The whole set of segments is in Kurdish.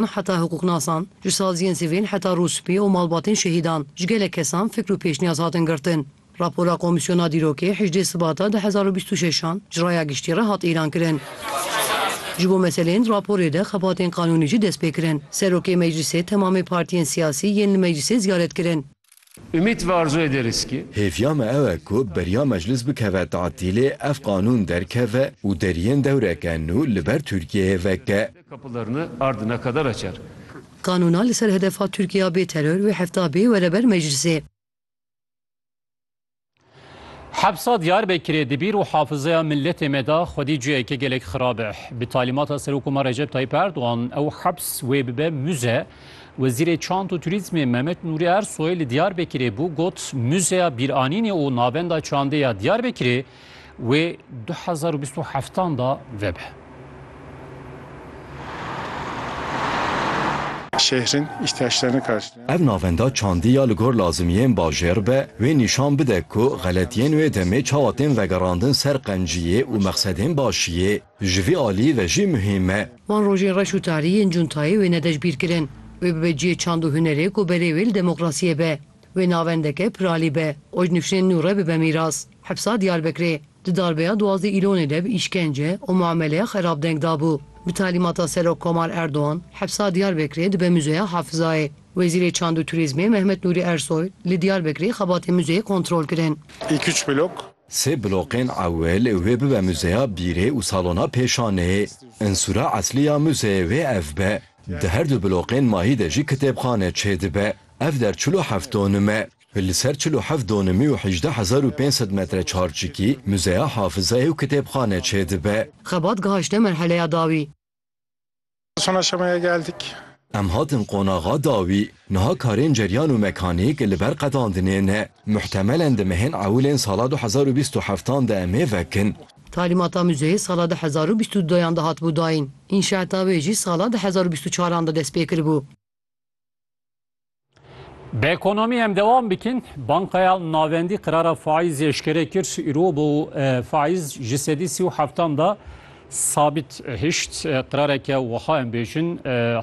Me heta hiqûqnasan, ji saziyên sivîl heta rûspî û malbatên şehîdan, ji gelek kesan fikr û pêşniyaz hatin girtin. Rapora Komîsyona Dîrokê hejdê Sibata du hezar û bîst û şeş an ji Raya Giştî re hat îlankirin. Ji bo meseleyên di raporê de xebatên qanûnî jî destpêkirin. Serokê Meclîsê temamê partiyên siyasî yên li meclîsê ziyaret kirin. Umît ve arzoyê dêrîskî. Hêviya me ew e ku beriya meclis bikeve tatîlê ev qanûn derkeve û deriyên dewreke nû li ber Tirkiyeyê veke. Qanûna li ser hedefa Tirkiya bê teror wê hefta bê were ber meclisê. Hepsa Diyarbekirê di bîr û hafizeya miletê me de xwedî ciheke gelek xirab e. Bi talîmata Serokoma Recep Tayyip Erdogan ew heps wê bibe muze. Wezîrê Çand û Turîzmê Mehmet Nûrî Ersoy li Diyarbekirê bû got muzeya bîranînê û navenda çandê ya Diyarbekirê Wê du hezar û bîst û heftan da vebe. Şehrin ihtiyaçlarını karşılayan. Ev navenda çandî ya li gor lazimiyên bajêr be wê nîşan bide ku xeletiyên wê demê çawa tên vegerandin ser qenciyê û mexsedên başiyê ji vî aliyî ve jî muhîm e. Van rojên reş û tarî yên cuntayê wê ne dej bîr kirin. Wê bibe ciyê çand û hunerê ku berê wê li demokrasiyê be. Wê navendeke piralî be, oj nifşên nû re bibe mîras. Hepsa Diyarbekirê, di darbeya duwazdeh îlonê de bi îşkence û muameleya xerab deng dabû. Bi talîmata Serok Komar Erdogan, hepsa Diyarbekirê dibe Muzeya Hafizayê. Wezîrê Çand û Turîzmê Mehmet Nûrî Ersoy, li Diyarbekirê xebatên muzeyê kontrol kirin. İlk üç blok. Sê bloqên ewil wê bibe Muzeya Bîrê û Salona Pêşaneyê. Unsura eslî ya muzeyê wê ev be. Di her du bloqên mahî de jî kitêbxane çêdibe. Ev der çil û heft donum e. Li ser çil û heft donimî û hejdeh hezar û pênc sed metre çarçikî muzeya hafizayê û kitêbxane çêdibe. Xebat gihişte merheleya dawî. Sona şemaya geldik. Em hatin qonaxa dawî. Niha karên ceryan û mekanîk li ber qedandinê ne. Muhtemelen di mehên ewilên sala du hezar û bîst û heftan de em ê vekin. Talîmata muzeyê sala du hezar û bîst û duyan de hatibû dayîn. Înşaeta wê jî sala du hezar û bîst û çaran de dest pê kiribû. Bi ekonomî em dewam bikin. Bankaya Navendî qirara faîz eşkere kir îro bo faîz ji sedî sî û heftan da sabit hişt. Qirareke wiha em bêjin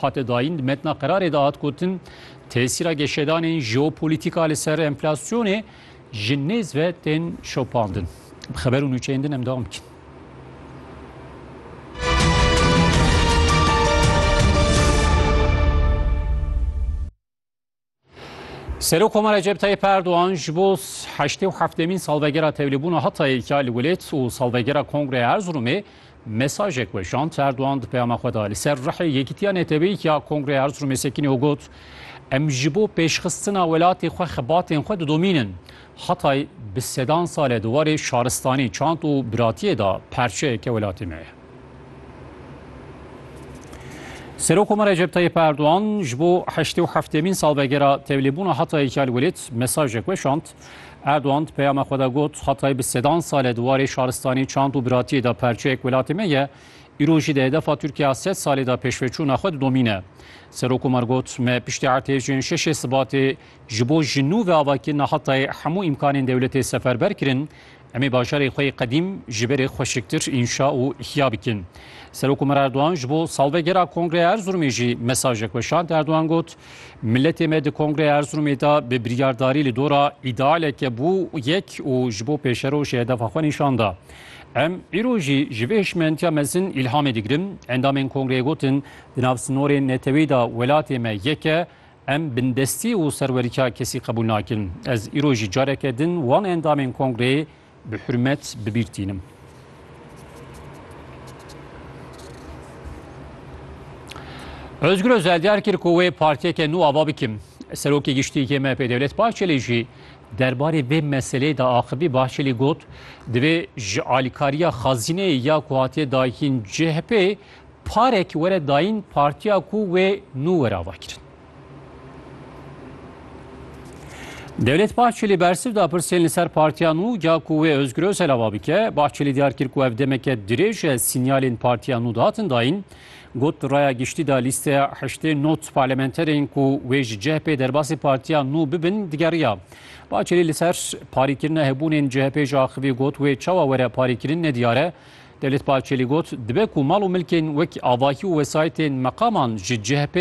hate dayîn di metna qirarê de hat gotin tesîra geşedanên jeopolîtîka li ser enflasyonê Ji nêz ve tên şopandin. Bi xeber û nûçeyên din em dewam bikin. Serok Komar Recep Tayyip Erdoğan ji bo heştê û heftêmîn salvegera tevlîbûna Hatayê ya li welêt û salvegera Kongreya Erzurumê Mesajek weşand Erdogan di peyama xwe de li ser rihê yekîtiya neteweyî ya Kongreya Erzurumê sekinî û got, Em ji bo pêşxistina welatê xwe xebatên xwe didomînin. Hatay bi sedan sal e di warê şaristanî, çand û biratiyê de parçeyeke welatê me ye. Serokkomar Recep Tayyip Erdogan ji bo heştê û heftêmîn salvegera tevlêbûna Hatayê ya li welêt mesajek weşand. Erdogan di peyama xwe de got, Hatay bi sedan sal e di warê şaristanî, çand û biratiyê de perçeyek welatê me ye. Îro jî di hedefa Tirkiya sed salê de pêşveçûna xwe didomîne. Serokkomar got, Me piştî ertêşên şeşê Sibatê ji bo ji nû ve avakirina Hatayê hemû îmkanên dewletê seferber kirin. Em ê bajarê xwe yê qedîm ji berê xweşiktir înşa û ihya bikin. Serokomer Erdogan ji bo salvegera Kongreya Erzurumê jî mesajek weşand. Erdogan got, Miletê me di Kongreya Erzurumê de bi biryardarî li dora îdealeke bû yek û ji bo pêşerojê hedefa xwe nîşan da. Em îro jî ji vê hişmentiya mezin îlhamê digirin. Endamên Kongreyê gotin, Di nav sinorên netewî de welatê me yek e, Em bindestî û serwerîtiya kesî qebûl nakin. Ez îro jî careke din wan endamên kongreyê bi hurmet bi bîr tînim. Özgür Özel diyar kir ku wê partiyeke nû ava bikim. Serokê Giştî yê MHP'ê Dewlet Bahçelî jî derbarê vê meseleyê de axivî Bahçelî got, divê ji alîkariya xazîneyê ya ku hatiye dayîn CHP'ê Parek were dayîn partiya ku wê nû were avakirin. Dewlet Bahçelî bersiv da pirsên li ser partiya nû ca ku wê Ozgur Ozel ava bike. Bahçelî diyar kir ku ev demeke dirêj e sînyalên partiya nû dihatin dayîn. Got di raya giştî de lîsteya heştê not parlamenterên ku wê ji CHP'ê derbasî partiya nû bibin digeriya. Bahçelî li ser parîkirina hebûnên CHP'ê jî axivî got wê çawa were parîkirin nediyar e. Devlet Bahçeli got, dibe ku mal û milkên wek avahî û wesayîtên meqaman ji CHP'ê